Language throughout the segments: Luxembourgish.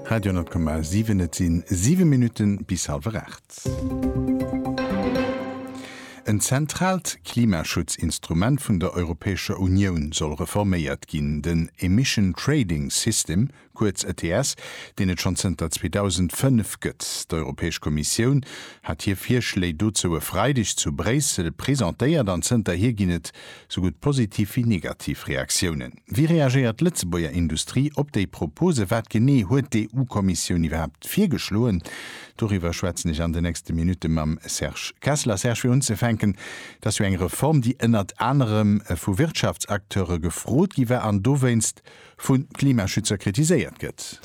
Radio 10,7, Et si 7 Minutte bis hallwer 8. En zentraalt Klimaschutzinstrument vun der Europäescher Unioun soll reforméiert ginn, den Emission Trading System, kuerz ETS, deen et schonn zënter 2005 gëtt. D'Europäesch Kommissioun hat hir Virschléi dozou e Freideg zu Bréissel presentéiert an zënterhier ginn et Sou gutt positiv wéi negativ Reaktiounen. Wéi reagéiert d'Lëtzebuerger Industrie op déi Propose? Wat genee huet d'EU-Kommissioun iwwerhaapt virgeschloen? Doriwwer schwätzen ech an de nächste Minutte mam Serge Kessler. Serge, fir unzefänken, dat ass jo eng Reform, déi ënnert anerem vu Wirtschaftsacteure gefrot gi war an dowéinst vun Klimaschützer kritiséiert gëtt.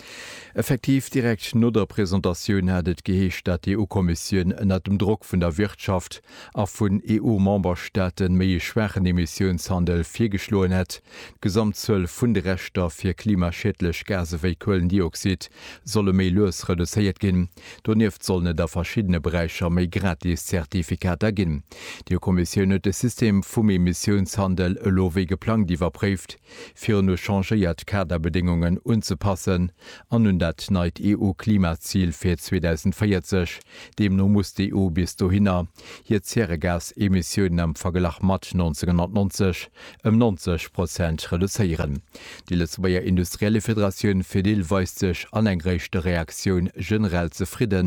Effektiv, direkt no der Presentatioun hat et geheescht, dat d'EU-Kommissioun ënnert dem Drock vun der Wirtschaft a vun EU-Memberstaaten méi ee schwaachen Emissiounshandel virgeschloen hätt. D'Gesamtzuel vun de Rechter fir klimaschiedlech Gase wéi Kuelendioxid solle méi lues reduzéiert ginn. Donieft sollen et a verschiddene Beräicher méi gratis Zertifikater ginn. D'EU-Kommissioun huet de System vum Emissiounshandel elo wéi geplangt iwwerpréift. virun u changéiert Kaderbedéngungen unzepassen an un dat neit EU-Klimazil fir 2040. Deemno muss d'EU bis dohinner hir Zäregasemissiounen am Verglach mat 1990 ëm 90 Prozent reduzéieren. Déi Lëtzebuerger Industriellefederatioun Fedil weist sech an eng réischte Reaktioun generell zefridde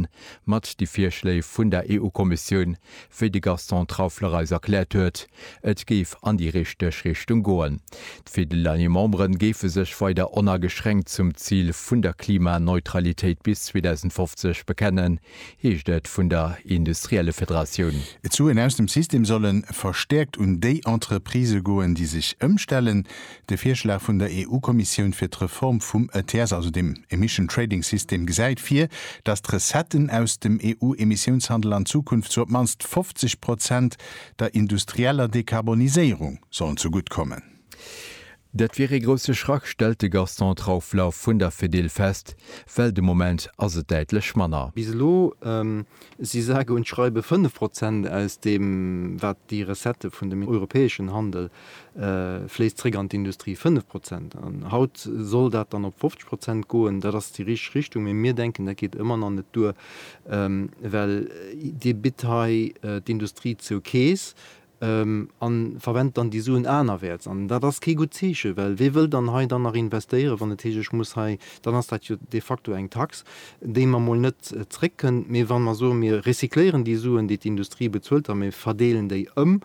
mat de Virschléi vun der EU-Kommissioun, Wéi de Gaston Trauffler eis erkläert huet, et géif an déi richteg Richtung goen. D'Fidel-Año Memberen géife sech weider onageschränkt zum Zil vun der Klimaneutralitéit bis 2050 bekennen, heescht et vun der Industriellefederatioun. D'Suen aus dem System solle verstäerkt un déi Entreprisë goen, déi sech ëmstellen. De Virschlag vun der EU-Kommissioun fir d'Reform vum ETS, also dem Emission Trading System, gesäit vir, datt d'Recetten aus dem EU-Emissiounshandel an Zukunft zu op d'mannst 50 Prozent der industrieller Dekarboniséierung sollen zegutt kommen. Dat wier ee grousse Schrack, stellt de Gaston Traufler vun der Fedil fest, well de Moment ass et däitlech manner. Bis elo si sage und schreibe 5 Prozent aus deem, wat déi Recettë vun dem europäeschen Handel fléisst zréck an d'Industrie, 5 Prozent. An haut soll dat dann op 50 Prozent goen. Dat ass déi richteg Richtung, mee mir denken, dat geet ëmmer nach net duer, well Dir bitt hei d'Industrie zur Keess a verwent dann déi Suen anerwäerts. An dat ass kee gutt Zeechen, well wie wëll dann hei dann nach investéieren, wann et heescht, ech muss hei, dann ass dat jo de facto eng Tax, déi mer emol net zréckkënnt. Mee wa mer soen, mir recycléieren déi Suen, déi d'Industrie bezuelt, a mir verdeelen déi ëm,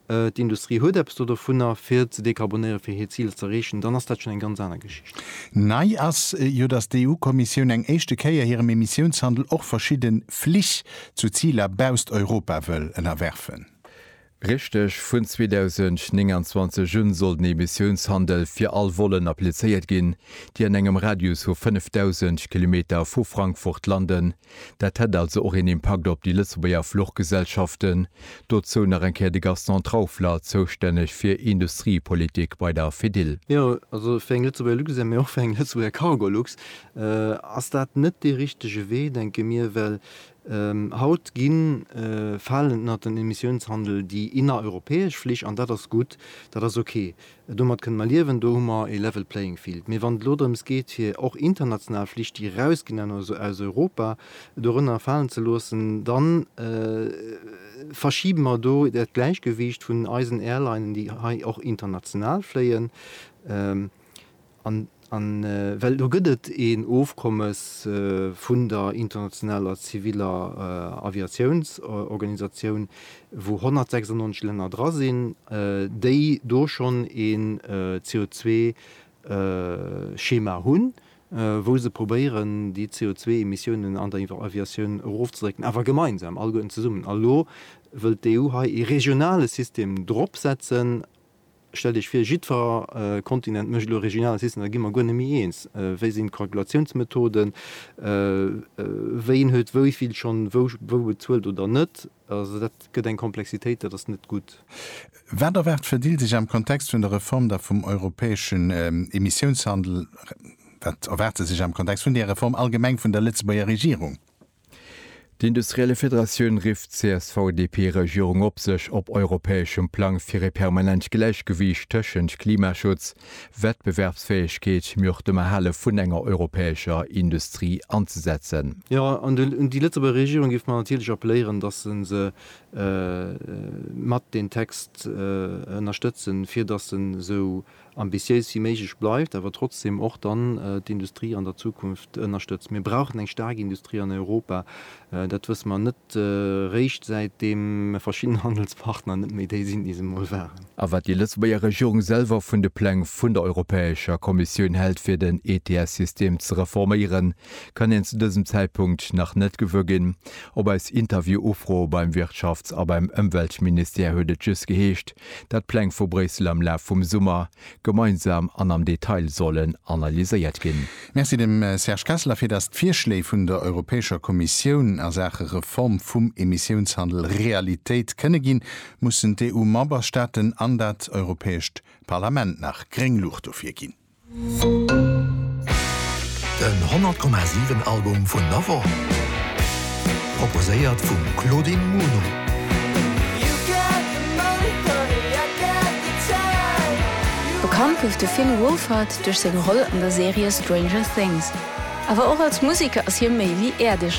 d'Industrie huet eppes do dovunner, fir ze dekarbonéieren, fir hir Ziler z'erreechen, dann ass dat schonn eng ganz aner Geschicht. Nei ass jo, datt d'EU-Kommissioun eng éischte Kéier hirem Emissiounshandel och verschidde Flich zu Ziler bausst Europa wëll ënnerwerfen. Richteg, vun 2029 un soll den Emissiounshandel fir all Volen applizéiert ginn, déi an engem Radius vu 5.000 Kilometer vu Frankfurt landen, Dat hätt also och een Impakt op déi Lëtzebuerger Fluchgesellschaften. Dozou nach eng Kéier de Gaston Traufler, zoustänneg fir Industriepolitik bei der Fedil. Jo, also fir eng Lëtzebuerger Luxair, mee och fir eng Lëtzebuerger Cargolux ass dat net dee richtege Wee, denke mir, well haut gi falen ënnert den Emissiounshandel déi innereuropäesch Flich an dat ass gutt, dat ass okay. Domat kënnen mer liewen, do hu mer e level playing field. Mee wann et elo drëms geet fir och international Flich déi erausginn aus Europa dorënner falen ze loossen, da verschibe mer do dat Gläichgewiicht vun eisen Airlinen déi hei och international fléien. An well do gëtt et een Ofkommes vun der internationaler ziviller Aviatiounsorganisatioun, wou 196 Länner dra sinn, déi do schonn een CO2-Schema hunn, wou se probéieren, déi CO2-Emissiounen an der Aviatioun erofzedrécken, awer gemeinsam, alleguerten zesummen. A lo wëllt d'EU hei ee regionale System dropsetzen. Stellt Iech vir, jiddfer Kontinent mécht elo e regionale System, da gi mer guer net méi eens. Wéi sinn d'Kalkulatiounsmethoden? Ween huet wéi vill schonn wou bezuelt oder net? Also dat gëtt eng Komplexitéit, dat ass net gutt. Wat erwaart d'Fedil sech am Kontext vun der Reform da vum europäeschen Emissiounshandel, wat erwaart se sech am Kontext vun där Reform allgemeng vun der Lëtzebuerger Regierung? D'Industrielle Federatioun rifft d'CSV-DP-Regierung op, sech op europäeschem Plang fir e permanent Gläichgewiicht tëschent Klimaschutz, Wettbewerbsfäegkeet, mee och dem Erhale vun enger europäescher Industrie anzesetzen. Jo, an un déi Lëtzebuerger Regierung géife mer natierlech appelléieren, datt se se mat deen Text ënnerstëtzen, fir datt se esou ambitiéis wéi méiglech bleift, awer trotzdem och dann d'Industrie an der Zukunft ënnerstëtzt. Mir brauchen eng staark Industrie an Europa. Dat wësse mer net réischt säitdeem verschidden Handelspartner net méi déi sinn, déi se emol waren. A wat déi Lëtzebuerger Regierung selwer vun de Pläng vun der Europäescher Kommissioun hält fir den ETS-System ze reforméieren, kann een zu dësem Zäitpunkt nach net gewuer ginn. Op eis Interview-Ufro beim Wirtschafts a beim Ëmweltministère huet et just geheescht, dat d'Pläng vu Bréissel am Laf vum Summer gemeinsam an am Detail sollen analyséiert ginn. Merci dem Serge Kessler, fir datt d'Virschléi vun der Europäescher Kommissioun a Saache Reform vum Emissiounshandel Realitéit kënne ginn, mussen d'EU-Memberstaaten an dat Europäescht Parlament nach gréng Luucht dofir ginn. Den 100,7 Album vun der Woch, proposéiert vum Claudine Muno. Bekannt gouf de Finn Wolfhard duerch seng Roll an der Serie Stranger Things. Awer och als Museker ass hie méi wéi äerdeg.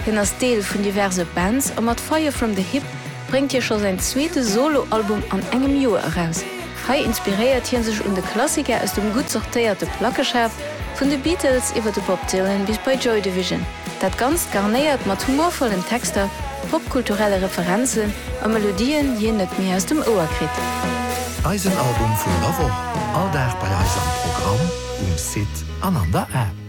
Hien ass Deel vun diverse Bands a mat Fire From The Hip bréngt hie scho säin zweete Solo-Album an engem Joer eraus. Hei inspiréiert hie sech un de Klassiker aus dem gutt sortéierte Plackeschaf, vun de Beatles iwwer de Bob Dylan bis bei Joy Division. Dat Ganzt garnéiert mat humorvollen Texter, popkulturelle Referenzen a Melodien, déi een net méi aus dem Ouer kritt. Eisen Album vun der Woch, all Dag bei eis am Programm, um Site an an der App.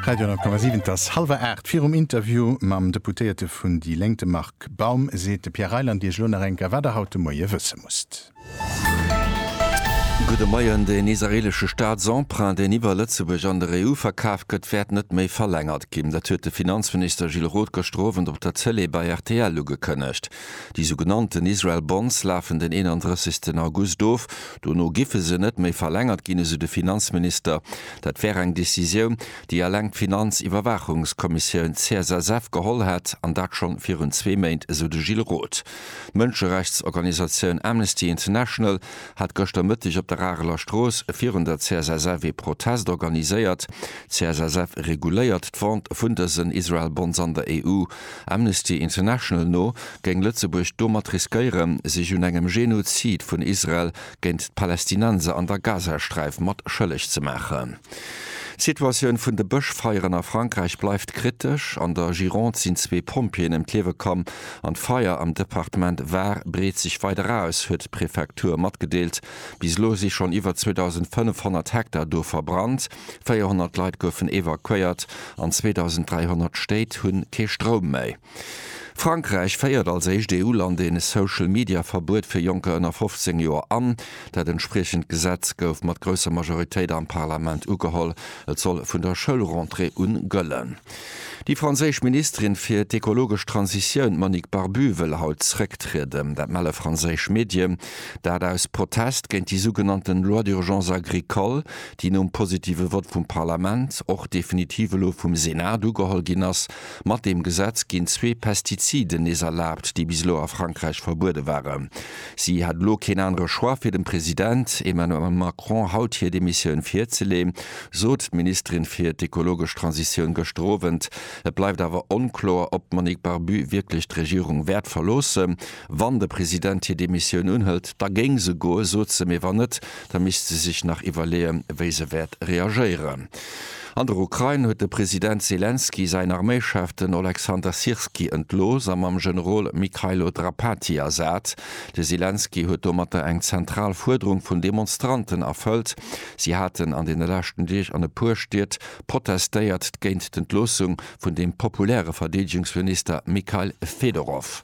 Radio 10,7 Et ass hallwer 8. Virum Interview mam Deputéierte vun déi Lénk, de Marc Baum, seet de Pierre Reyland Iech elo nach eng Kéier, wat Der haut de Moie wësse musst. Gudde Moien, Den israeelesche Staatsemprunt, deen iwwer Lëtzebuerg an der EU verkaaft gëtt, wäert net méi verlängert ginn. Dat huet de Finanzminister Gilles Roth gëschter Owend op der Tëlee bei rtl ugekënnegt. Déi sou genannten Israel Bonds lafen den 31 August of. Dono giffe se net méi verlängert ginn, esou de Finanzminister. Dat wär eng Decisioun, déi eleng d'Finanziwwerwaachungskommissioun CSSF geholl hätt, an dat schonn virun zwee Méint, esou de Gilles Roth. D'Mënscherechtsorganisatioun Amnesty International hat gëschter Mëtteg op der Areler Strooss virun der CSSF ee Protest organiséiert. D'CSSF reguléiert d'Vente vun dësen Israel-Bonds an der EU. Amnesty International no géing Lëtzebuerg domat riskéieren, sech un engem Genozid vun Israel géint d'Palästinenser an der Gazasträif mat schëlleg ze maachen. D'Situatioun vun de Bëschfeieren a Frankräich bleift kritesch. An der Gironde sinn zwee Pompjeeën ëm d'Liewe komm an d'Feier am Departement Var breet sech weider aus, huet d'Prefektur matgedeelt. Bis elo si schonn iwwer 2.500 Hektar do verbrannt, 400 Leit goufen evakuéiert an 2.300 Stéit hu kee Stroum méi. Frankräich féiert als éischt EU-Land ee Social-Media-Verbuet fir Jonker ënner 15 Joer an. Dat entspriechend Gesetz gouf mat grousser Majoritéit am Parlament ugeholl. Et soll vun der Schoulrentrée un gëllen. Déi franséisch Ministerin fir d'ekologesch Transitioun, d'Monique Barbut, wëll haut zrécktrieden. Dat melle franséisch Medien. Dat aus Protest géint déi sougenannten Loi d'urgence agricole, déi nom positive Vott vum Parlament, och definitiv elo vum Senat ugeholl ginn ass. Mat deem Gesetz ginn zwee Pestiziden nees erlaabt, déi bis elo a Frankräich verbuede waren. Si hat elo keen anere Choix, fir dem President Emmanuel Macron haut hir Demissioun virzeleeën, sot d'Ministerin fir d'ekologesch Transitioun gëschter Owend. Et bleift awer onkloer, ob d'Monique Barbu wierklech d'Regierung wäert verloossen. Wann de President hir Demissioun unhëlt, da géing se goen, sot se. Mee wann net, da misst se sech nach iwwerleeën, wéi se wäert reagéieren. An der Ukrain huet de President Selenskyj säin Arméischef, den Oleksandr Syrskyi, entlooss a mam Generol Mykhailo Drapatyi ersat. De Selenskyj huet domatter eng zentral Fuerderung vun Demonstranten erfëllt. Si haten an deene leschten Deeg an e puer Stied protestéiert géint d'Entloossung vun dem populäre Verdeedegungsminister Mikhail Fedorov.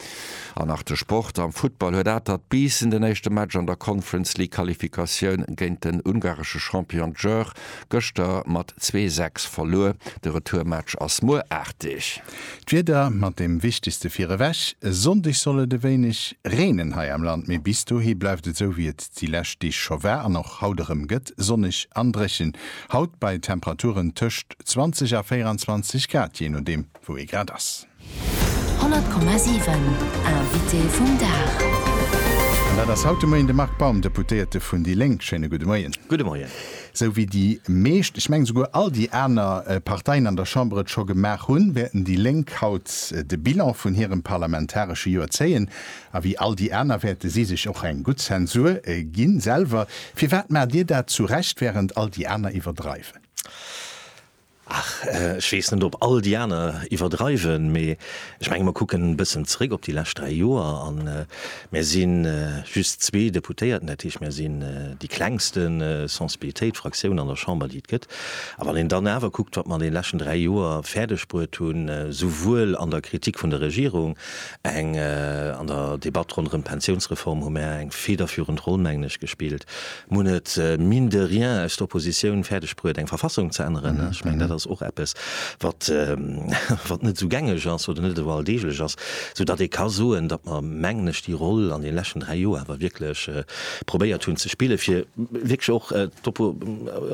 An nach de Sport, Am Futtball huet Atert Biissen den éischte Match an der Conference League Qualifikatioun géint den ungaresche Champion Győr gëschter mat zwee sechs verluer. De Retourmatch ass muer aarteg. D'Wieder mat deem wichtegste virewech, E Sonndeg soll et e wéineg reenen hei am Land, mee bis dohi bleift et esou wéi et déi lescht Deeg scho war an och haut erëm gëtt, sonneg an dréchen. Haut bei Temperaturen tëscht 20 a 24 Grad, jee nodeem wou ee grad ass. 100,7 Invité vum Dag. An dat ass haut de Moien de Marc Baum, Deputéierte vun déi Lénk. Schéine gudde Moien. Gudde Moien. Esou wéi déi meescht, ech mengen esouguer all déi aner Parteien an der Chamber et scho gemaach hunn, wäerten déi Lénk haut de Bilan vun hirem parlamentaresche Joer zéien. A wéi all déi aner wäerte si sech och eng gutt Zensur gi selwer. Firwat maacht Dir dat zu Recht, wärend all déi aner iwwerdreiwen? Ach, ech weess net, ob all déi aner iwwerdreiwen, mee ech menge mer kucken e bëssen zeréck op déi lescht dräi Joer a mär si just zwee Deputéierten, dat heescht mär sinn déi klengste Sensibilitéit, Fraktioun an der Chamber, déi et gëtt. A wann een dann awer kuckt, wat mer an deene leschten dräi Joer fäerdeg bruet hunn, souwuel an der Kritik vun der Regierung, eng an der Debatt ronderëm d'Pensiounsreform hu mär eng federführend Roll, mengen ech, gespillt, Mun et, mine de rien, aus der Oppositioun fäerdeg bruet, eng Verfassung ze änneren. Ech mengen, dat ass och eppes, wat net esou gängeg ass oder net esou alldeeglech ass, soudatt ee ka soen, datt mer, mengen ech, déi Roll an deene leschten dräi Joer awer wierklech probéiert hunn ze spillen, fir wierklech och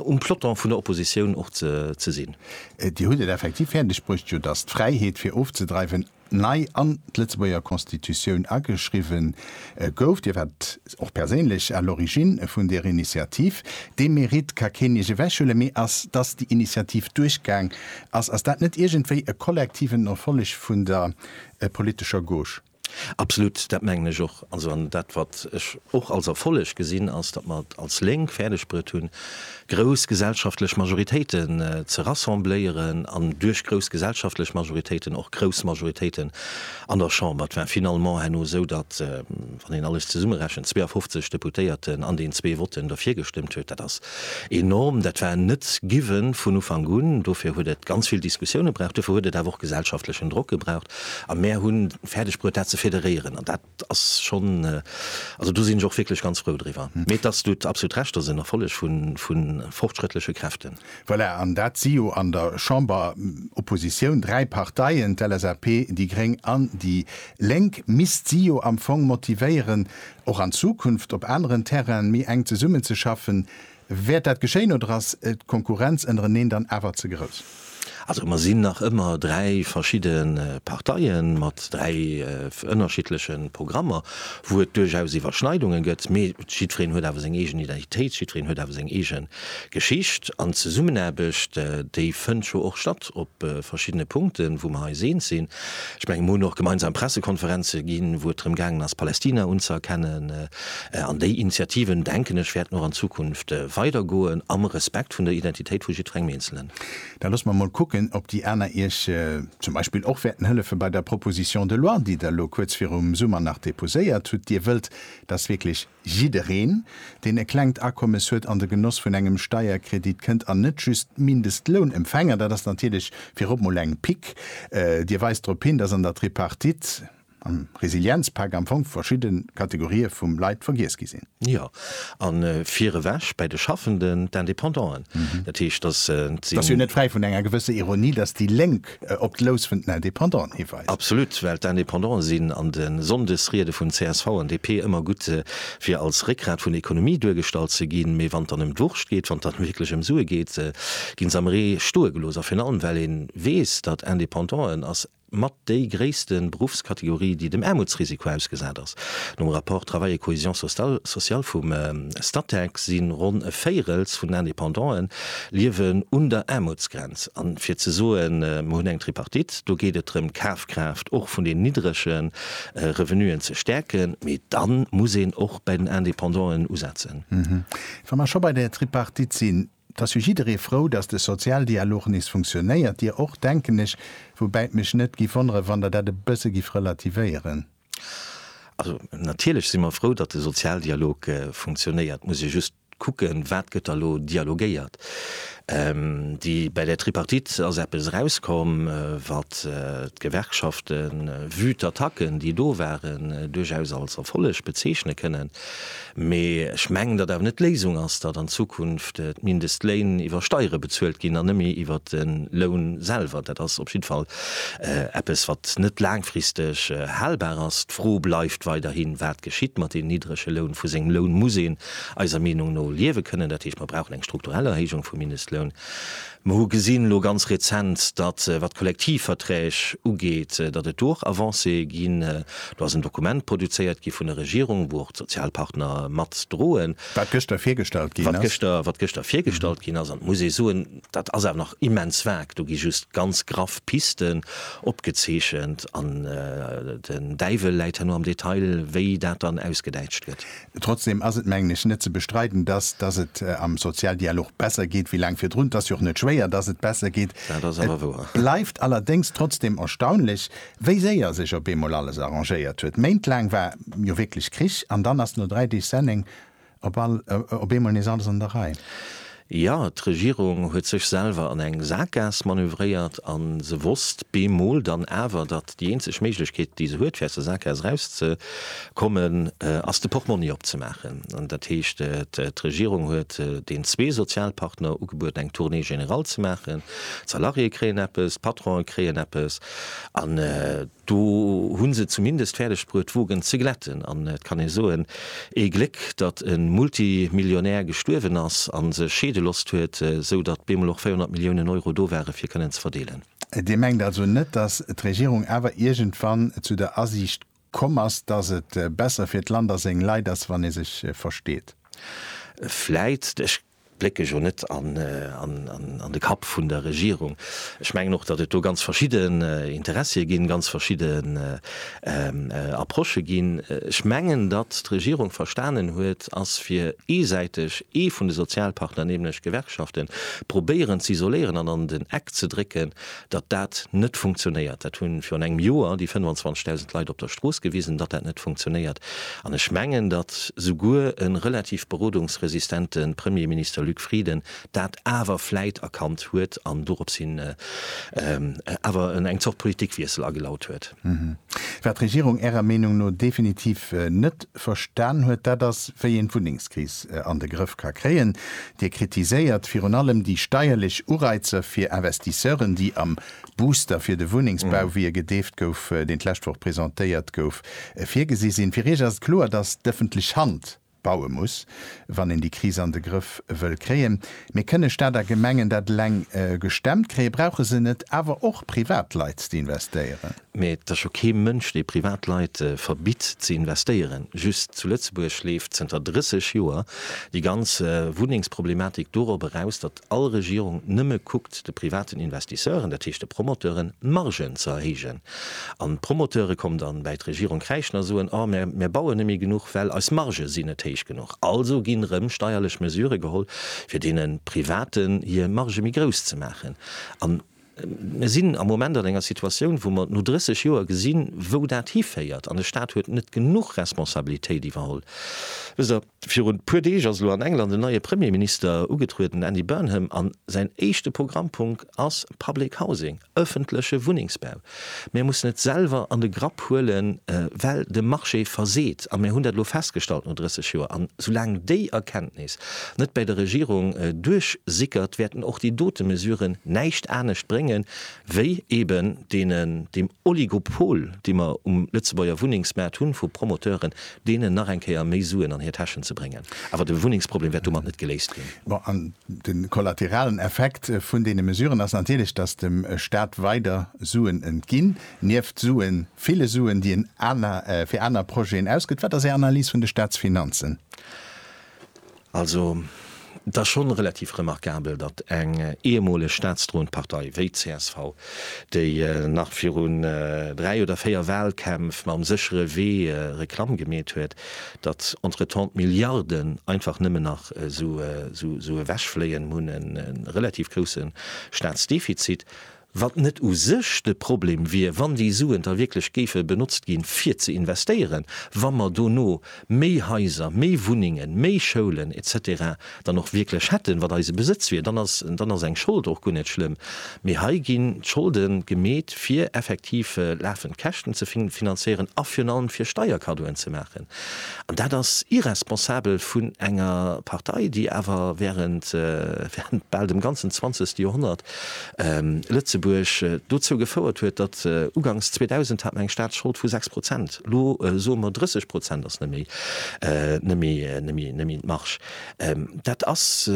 um Peloton vun der Oppositioun och ze sinn. Dir hutt et effektiv fäerdeg bruecht, jo, datt d'Fräiheet, fir ofzedreiwen, nei an d'Lëtzebuerger Constitutioun ageschriwwe gouf. Dir waart och perséinlech à l'origine vun där Initiativ. Dee Mérite ka keen Iech ewechhuelen, mee ass, dass déi Initiativ duerchgaang ass, ass dat net iergendwéi e kollektiven Erfolleg vun der politescher Gauche? Absolut, dat mengen ech och. Also, an dat, wat ech och als Erfolleg gesinn, ass, datt mer et als Lénk fäerdegbruet hunn, grouss gesellschaftlech Majoritéiten ze rassembléieren an duerch grouss gesellschaftlech Majoritéiten och grouss Majoritéiten an der Chamber. Et war finalement herno esou, datt, wann een alles zesummerechent, 52 Deputéierten an den zwee Votten derfir gestëmmt huet. Dat ass enorm. Dat war net given vun Ufank un. Dofir huet et ganz vill Diskussioune braucht. Dofir huet et awer och gesellschaftlechen Drock gebraucht. A mär hu fäerdegbruet, dat ze federéieren. An dat Et ass schonn, also do sinn ech och wierklech ganz frou driwwer. Mee et ass, du hutt absolut Recht, et ass en Erfolleg vu fortschrëttleche Kräften. Voilà, an dat si jo an der Chamber, Oppositioun, dräi Parteien, d'LSAP, déi Gréng an déi Lénk, misst si jo am Fong motivéieren, och an Zukunft op aneren Terrainen méi enk zesummenzeschaffen. Wäert dat geschéien oder ass d'Konkurrenz ënnereneen dann awer ze grouss? Also mer sinn nach ëmmer dräi verschidde Parteie mat dräi ënnerschiddleche Programmer, wou et duerchaus Iwwerschneidunge gëtt, mee jiddwereen huet awer seng eegen Identitéit, jiddwereen huet awer seng eege Geschicht. An d'Zesummenaarbecht, déi fënnt jo och statt op verschiddene Punkten, wou mer eis eens sinn. Ech mengen, mer hunn och gemeinsam Pressekonferenze ginn, wou et drëm gaangen ass, Palästina unzëerkennen. An déi Initiativen, denken ech, wäerten och an Zukunft weidergoen, am Respekt vun der Identitéit vu jiddwerengem Eenzelen. Da loosse mer emol kucken, ob déi aner Iech zum Beispill och wäerten hëllefe bei der Proposition de loi, déi Der elo kuerz virum Summer nach déposéiert hutt. Dir wëllt, dass wierklech jiddereen, deen e klengt Akommes huet, an de Genoss vun engem Steierkredit kënnt an net just d'Mindestlounempfänger. Dat ass natierlech virop emol eng Pique. Dir weist drop hin, dass an der Tripartite, Am Resilienzpak am Fong verschidde Kategorië vu Leit vergiess gi sinn. Jo, a vir ewech bäi de Schaffenden, d'Indépendanten. Dat heescht, datt si. Ass jo net fräi vun enger gewësser Ironie, datt déi Lénk op d'Lous vun den Indépendanten hiweist. Absolut, well d'Indépendanten sinn an de Sonndesriede vun csv an DP ëmmer gutt, fir als Réckgrat vun der Ekonomie duergestallt ze ginn, mee wann et dann ëm d'Wurscht geet, wann et dann wierklech ëm Sue geet, gi se am Ree stoe gelooss. A virun allem, well ee weess, datt Indépendanten ass. mat déi gréisste Beruffskategorie, déi dem Aarmutsrisiko ausgesat ass. Nom Rapport Travail et cohésion sociale vum Statec si ronn e Véirels vun den Indépendante liewen un der Aarmutsgrenz. A fir ze soen, Mir hunn eng Tripartite, do geet et drëm, d'Kafkraaft och vun deenen niddrege Revenuen ze stäerken, mee da muss een och bei den Indépendanten usetzen. Wa mer scho bei där Tripartite sinn, 't ass jo jidderee frou, dass de Sozialdialog nees funktionéiert, Dir och, denken ech, woubäi et mech net giff wonneren, wann Der dat e bësse giff relativéieren. Also, natierlech si mer frou, datt de Sozialdialog funktionéiert. Et muss ee just kucken, wat gëtt da elo dialogéiert. Déi, bei där Tripartite ass eppes erauskomm, wat d'Gewerkschaften, vue d'Attacken, déi do waren, duerchaus als Erfolleg bezeechne kënnen. Mee ech mengen, datt awer net d'Léisung ass, datt an Zukunft d'Mindestléin iwwer Steiere bezuelt ginn an net méi iwwer de Loun selwer. Dat ass op jidde Fall eppes, wat net laangfristeg halbar ass. D'Fro bleift weiderhi, wat geschitt mat deenen niddrege Loun? Vu sengem Loun muss een eiser Meenung no liewe kënnen. Dat heescht, mer brauchen eng strukturell Erhéijung vum Mindestloun. Mer hu gesinn elo ganz rezent, datt, wat d'Kollektivverträg ugeet, datt et do och Avancéë ginn. Do ass en Dokument produzéiert gi vun der Regierung, wou och d'Sozialpartner mat droen. Wat gëschter virgestallt ginn ass. Wat gëschter, wat gëschter virgestallt ginn ass. An et muss ee soen, dat ass awer nach immens vag. Do gi just ganz graff Pisten opgezeechent an den Däiwel läit herno am Detail, wéi dat dann ausgedäitscht gëtt. Trotzdem ass et, mengen ech, net ze bestreiden, dass, dass et am Sozialdialog besser geet wéi laang virdrun. Et ass jo och net schwéier, dass et besser geet. Et bleift allerdéngs trotzdem erstaunlech, wéi séier sech op eemol alles arrangéiert huet. Méintlaang war jo wierklech Krich, an dann ass no dräi Deeg Senneng op all, op eemol nees alles an der Rei. Jo, d'Regierung huet sech selwer an eng Saakgaass manövréiert a se wosst bemol dann awer, datt déi eenzeg Méiglechkeet, déi se huet, fir aus der Saakgaass erauszekommen, ass, de Portmonni opzemaachen. Dat heescht, d'Regierung huet den zwee Sozialpartner ugebueden, eng Tournée générale ze maachen. D'Salariéë kréien eppes, d'Patronen kréien eppes. Do hu se et zumindest fäerdegbruet d'Wogen ze glätten an et kann ee soen, ee Gléck datt e Multimillionär gestuerwen ass a sech scheede losst huet, sou datt bemol och 400 Milliounen Euro do ware fir kënnen ze verdeelen. Dir mengt also net, datt d'Regierung awer iergendwann zu der Asiicht komm ass, datt et besser fir d'Land a seng Leit ass, wann ee sech versteet? Vläit. Ech Blécke jo net an de Kapp vun der Regierung. Ech mengen och, datt et do ganz verschidden Interessie ginn, ganz verschidden Approchë ginn. Ech mengen, datt d'Regierung verstanen huet, ass fir eesäiteg ee vun de Sozialpartner, nämlech d'Gewerkschaften, probéieren ze isoléieren an an den Eck ze drécken, datt dat net funktionéiert. Dat hu virun engem Joer déi 25.000 Leit op der Strooss gewisen, datt dat net funktionéiert. An ech mengen, datt souguer e relativ berodungsresistente Premierminister Luc Frieden dat awer vläit erkannt huet an dorops hin awer eng Zort Politikwiessel agelaut huet. Wat d'Regierung Ärer Meenung no definitiv net verstan huet, dat ass, wéi een d'Wunnengskris an de Grëff ka kréien. Dir kritiséiert virun allem déi steierlech Ureizer fir Investisseuren, déi am Booster fir de Wunnengsbau, wéi e gedeeft gouf, deen d'lescht Woch presentéiert gouf, virgesi sinn. Fir Iech ass et kloer, datt d'ëffentlech Hand baue muss, wann een déi Kris an de Grëff wëll kréien. Mee kënne Staat a Gemengen dat eleng gestemmt kréien? Brauche se net awer och Privatleit, déi investéieren? Mä et ass jo kee Mënsch, dee Privatleit verbitt ze investéieren. Just zu Lëtzebuerg leeft zënter 30 Joer déi ganz Wunnengsproblematik dorop eraus, datt all Regierung nëmme kuckt, de privaten Investisseuren, dat heescht de Promoteuren, d'Margen ze erhéijen. An d'Promoteure kommen dann bäi d'Regierung kräischen a soen, Oh, mär, mär bauen net méi genuch, well eis Margë sinn net héich genuch. Also ginn erëm steierlech Mesüre geholl, fir deene Privaten hir Margë méi grouss ze maachen. An Mir sinn am Moment an enger Situatioun, wou mer no 30 Joer gesinn, wou dat hiféiert, an de Stat huet net genuch Responsabilitéit iwwerholl. Wësst Der, virun e puer Deeg ass elo an England en neie Premierminister ugetrueden, den Andy Burnham, a säin éischte Programmpunkt ass public housing, ëffentleche Wunnengsbau. Mir mussen et selwer an de Grapp huelen, well de Marché verseet. A mir hunn dat elo festgestallt no 30 Joer. An soulaang déi Erkenntnis net bäi der Regierung duerchsickert, wäerten och déi dote Mesuren näischt anescht brénge wéi eben deem Oligopol, dee mer um Lëtzebuerger Wunnengsmaart hunn, vu Promoteuren, deenen nach eng Kéier méi Suen an hir Täschen ze bréngen. Awer de Wunnengsproblem wäert domat net geléist ginn. Bon, an de kollateralen Effekt vun deene Mesuren ass natierlech, dass dem Stat weider Suen entginn, nieft Suen, ville Suen, déi en fir aner Projeten ausgëtt. Wat ass Är Analys vun de Statsfinanzen? Also, et ass schonn relativ remarkabel, datt eng ehemoleg staatsdroend Partei wéi d'CSV, déi nach virun dräi oder véier Wahlkämpf mam séchere Wee Reklamm gemeet huet, datt entretemps d'Milliarden einfach nëmmen nach esou ewechfléien. Mir hunn e relativ grousse Staatsdefizit. Wat net u sech de Problem wier, wann déi Suen da wierklech géife benotzt gi fir ze investéieren, wa mer dono méi Haiser, méi Wunnengen, méi Schoulen etc. Dann och wierklech hätten, wat eise Besëtz wier, dann ass dann ass eng Schold och guer net schlëmm. Mee hei ginn d'Scholde gemeet, fir effektiv lafend Käschten ze finanzéieren a virun allem fir Steierkaddoen ze maachen. An dat ass irresponsabel vun enger Partei, déi awer während bal dem ganzen zwanzegste Joerhonnert Lëtzebuerg dozou gefouert huet, datt ugangs 2000 hat mer eng Staatsschold vu 6 Prozent, elo soe mer 30 Prozent ass net méi d'Marge. Dat ass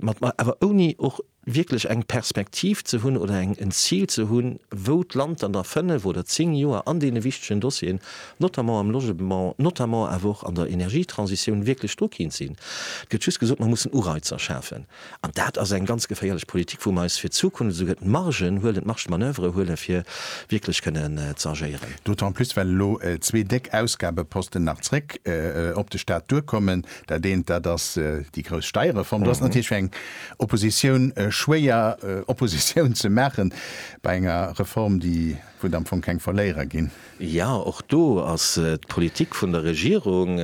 mat awer ouni och wierklech eng Perspektiv ze hunn oder en Zil ze hunn, wou d'Land dann a fënnef oder zéng Joer an deene wichtegen Dossieren, notamment am Logement, notamment awer och an der Energietransitioun, wierklech do kéint sinn. Et gëtt just gesot, mer mussen Ureizer schafen. An dat ass eng ganz geféierlech Politik, wou mer eis fir d'Zukunft esouguer d'Margen huelen, d'Marge de manoeuvre huelen, fir wierklech kënnen ze agéieren. D'autant plus, well elo zwee déck Ausgabeposten nach zréck op de Stat duerkommen. Dat eent, dat ass déi grouss Steierreform. Do ass natierlech fir eng Oppositioun schwéier, Oppositioun ze maachen bei enger Reform, déi, wou der am Fong keng Verléierer ginn. Jo, och do ass d'Politik vun der Regierung,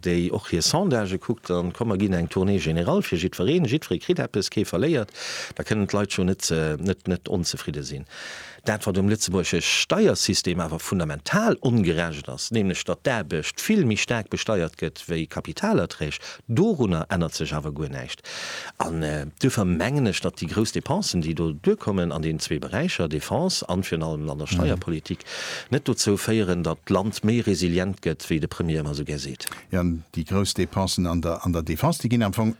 déi och hir Sondagë kuckt, an komm mer ginn eng Tournée générale fir jiddwereen, jiddweree kritt eppes, kee verléiert, da kënnen d'Leit scho net net onzefridde sinn. Dat wat um lëtzebuergesche Steiersystem awer fundamental ongerecht ass, nämlech datt d'Aarbecht vill méi staark besteiert gëtt wéi Kapitalerträg, Dorunner ännert sech awer guer näischt. An duerfir mengen ech, datt déi grouss Depensen, déi do duerkommen an deenen zwee Beräicher, Defense an virun allem an der Steierpolitik, net dozou féieren, datt d'Land méi resilient gëtt, wéi de Premier ëmmer esou gär seet. Jo, déi grouss Depensen an der Defense, déi ginn am Fong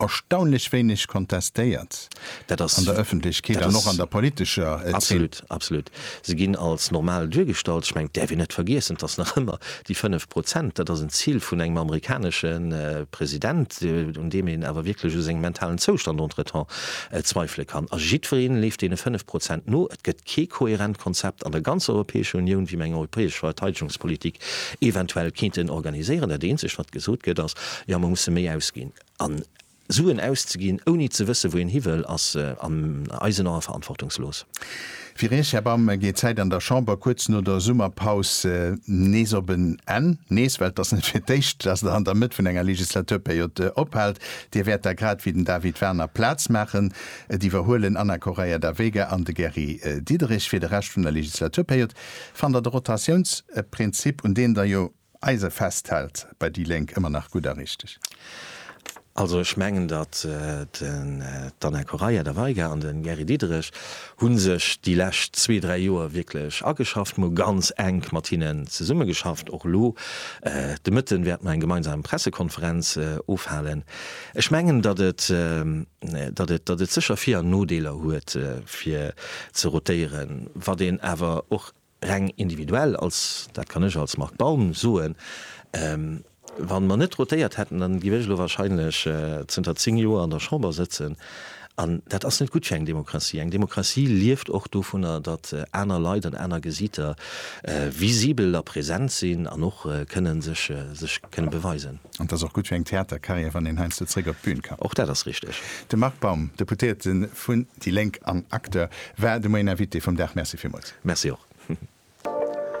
erstaunlech wéineg kontestéiert an der Öffentlechkeet an och an der politescher Zeen. Absolut, absolut. Se ginn als normal duergestallt. Ech mengen, et däerf een net vergiessen, et ass nach ëmmer déi 5 Prozent. Dat ass en Zil vun engem amerikanesche President, un deem een awer wierklech u sengem mentalen Zoustand entretemps zweifele kann. A jiddweree leeft deene 5 Prozent no. Et gëtt kee kohärent Konzept an der ganzer Europäescher Unioun, wéi mir eng europäesch Verteidegungspolitik eventuell kéinten organiséieren. Dat Eenzegt, wat gesot gëtt, ass, Jo, mir musse méi ausginn. Suen auszeginn, ouni ze wësse wou een hiwëll, ass an eisen Ae verantwortungslos. Fir Iech, Här Bam, geet d'Zäit an der Chamber kuerz no der Summerpaus nees op en Enn. Nees, well et ass net fir d'éischt, datt Der an der Mëtt vun enger Legislaturperiod ophält. Dir wäert da, grad wéi den David Warner, Plaz maachen. Et iwwerhuelen Anna Correia da Vega an de Gary Diderich fir de Rescht vun der Legislaturperiod. Fannt Der de Rotatiounsprinzip, un deen Der jo Eise festhält, bei déi Lénk ëmmer nach gutt a richteg. Also ech mengen, datt d'Anna Correia da Veiga an de Gary Diderich hu sech déi lescht zwee, dräi Joer wierklech ageschafft. Mer hu ganz enk mat hinnen zesummegeschafft. Och elo de Mëtten wäerte mer eng gemeinsam Pressekonferenz ofhalen. Ech mengen, datt et sécher Vir an Nodeeler huet, fir ze rotéieren, wat een awer och, Reng individuell, als, dat kann ech als Marc Baum soen, wa mer net rotéiert hätten, dann géif ech elo wahrscheinlech zënter zéng Joer an der Chamber sëtzen. An dat ass net gutt fir eng Demokratie. Eng Demokratie lieft och dovunner, datt aner Leit an aner Gesiiter visibel a present sinn an och kënnen sech, sech kënnen beweisen. An et ass och gutt fir eng Theatercarrière, wann een heiansdo zréck op d'Bün kann. Och dat ass richteg. De Marc Baum, Deputéierte vun. Déi Lénk an Acteur war de moien Invité vum Dag. Merci villmools. Merci och.